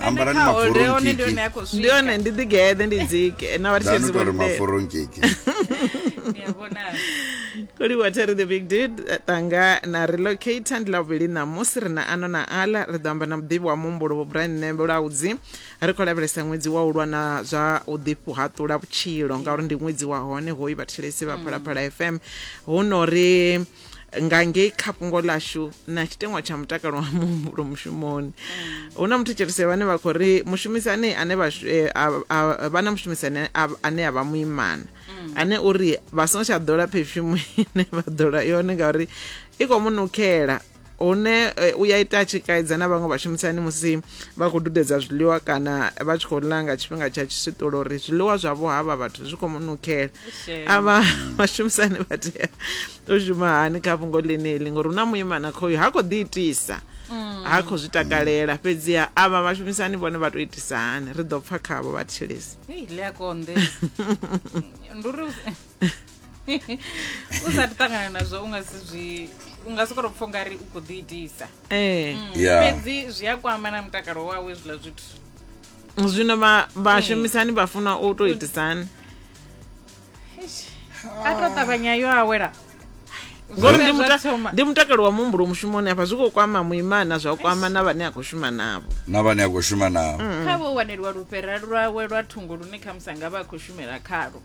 ambarani Kha holde maforo one ndi hone nkiki a khou ndi hone ndi ḓi geḓe ndi dzike na vhathu danu tori tshizibo maforo nkiki koliwa terry the big did tanga na relocator ndi lavhuvhili ṋamusi ri na ano na ala ri ḓo amba na muḓivhi wa muhumbulo vho brian nembe laudzi ri khou lavhelesa ṅwedzi wa u lwa na zwa u ḓihaṱula vhutshilo ngauri ndi ṅwedzi wa hone hoyu vhathetshelesi vha phalaphala fm hu no ri nga ngei kha fhungo ḽashu na tshiteṅwa tsha mutakalo wa muhumbulo mushumoni hu na muthetshelese vhane vha khou ri mushumisani ane vha shu- eh, a- a- vha na mushumisani a- ane a vha muimana ane uri vha songo tsha ḓola phefyumu ine vha ḓola yone ngauri i khou mu nukhela hune eh, u ya ita a tshi kaidza na vhaṅwe vhashumisani musi vha khou dudedza zwiḽiwa kana vha tshi khou ḽa nga tshifhinga tsha tshiswiṱulo uri zwiḽiwa zwavho havha vhathu zwi khou mu nukela avha vhashumisani vha tea u shuma hani kha fhungo ḽeneḽi ngori hu na muimana khoyu ha khou ḓi itisa mm. ha khou zwi takalela fhedziha avha vhashumisani vhone vha tou itisa hani ri ḓo pfa khavho vha thilisa u sa ti ṱangana nazwo u nga si zwi u nga sokoro pfha ungari u khou ḓi itisa eh. mm, fhedzi zwi a kwama na mutakalo wawe zwiḽa zwithu zwino vhashumisani vha funa u tou itisani a to ṱavhanya yo awela ngori ndi mutakalo wa muhumbulo mushumoni afha zwi khou kwama muimana zwa kwama na vhane a khou shuma navho na vhane a khou shuma navho kha vho waneliwa lufhera lwawe lwa thungo lune khamusi anga vha a khou shumela khalo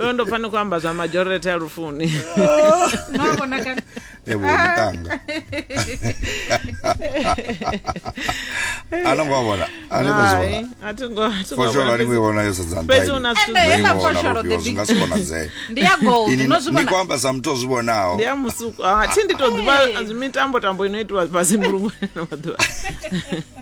uyo ndo pfani khou amba zwa majority a lufuni mavonakale evo mutanga anongo avona Hai, a thi ngo- a thi ngo fosholo vhona. aningo ivona yo fhedzi sedzandaivona una zwithu Ende heiḽa fosholo the zwi nga si konadzee ndi ya gold ini no zwi ni vhona khou amba sa muthu o zwi vhonaho ndi ya musuku a thi ndi to ḓivha mitambo tambo ino itiwa fhasi mbulungoni na maḓuvha